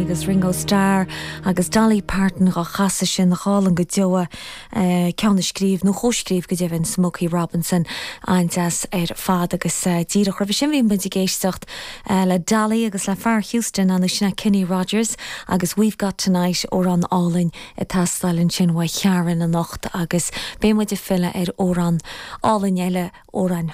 agus Ringo Starr agus Dolly Parton dá chasadh sin, nach álainn go deo é, ceann a scríobh, nó chomhscríobh go deimhin, Smokey Robinson. An-deas ar fad agus díreach roimhe sin bhí muid ag éisteacht le Dolly agus le fear Houston, ansin é Kenny Rogers? agus We've Got Tonight, amhrán álainn ag teastáil ansin uaidh Karen anocht agus beidh muid ag filleadh ar amhrán álainn eile, amhrán.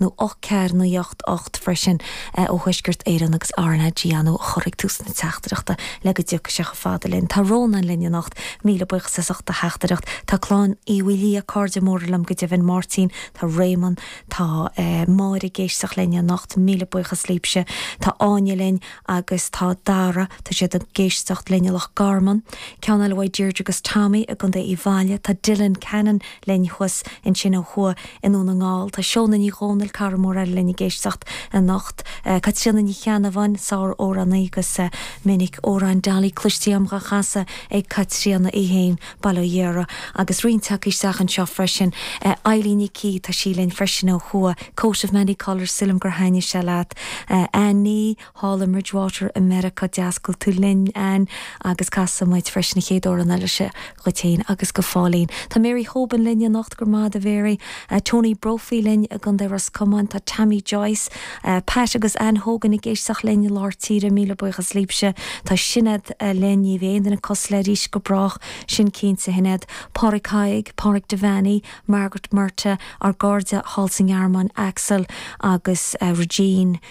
nó ocht ceathair naoi ocht ocht freisin ó Thuaisceart Éireann agus RnaG a chur ag tús na teachtaireachta le go dtiocfaidh sé chomh fada linn. Tá Rónán linn anocht. Míle buíochas as ucht do theachtaireacht. Tá Clann Uí Mhaoilío cairde móra linn go deimhin, Máirtín, tá Réamonn, tá Máire ag éisteacht linn anocht. Míle buíochas libhse. Tá Áine linn agus tá Dara. Tá siad ag éisteacht linn i Loch Garman. Ceann eile uaidh Deirdre agus Tommy i gContae Uíbh Fhailí. Tá Dylan Cannon. linn chuas. Ansin ó thuaidh i nDún na nGall, tá Seóna Ní Dhomhnaill, cara mór eile linn ag éisteacht anocht, Caitríona Ní Cheannabháin, sár-amhránaí, agus is minic amhráin Dolly cloiste a'm á chasadh ag Caitríona í féin, bail ó Dhia uirthi, agus roinnt acu isteach anseo freisin. Eilín Ní Cí, tá sí linn freisin ó thuaidh, Coat of Many Colours, sílim gur thaitnigh sé leat. Anne Ní. Thall i mBridgewater i Meiriceá tá's a'm go bhfuil tú linn, Anne, agus casfaidh muid freisin a chéad amhrán eile seo dhuit fhéin agus go fóillín. Tá Mary Hoban linn anocht, go raibh maith agat a Mhary. Tony Brophy linn i gContae Ros Comáin, tá Tammy Joyce, Pat agus Anne Hogan ag éisteacht linn i lár tíre, míle buíochas libhse. Tá Sinéad linn, ní bheidh aon duine cosúil léi arís go brách, sin cinnte, a Shinéad, Pádraig Thaidhg, Pádraig Devanney, Margaret Murtagh, ár gcairde thall sa nGearmáin, Axel agus Regine,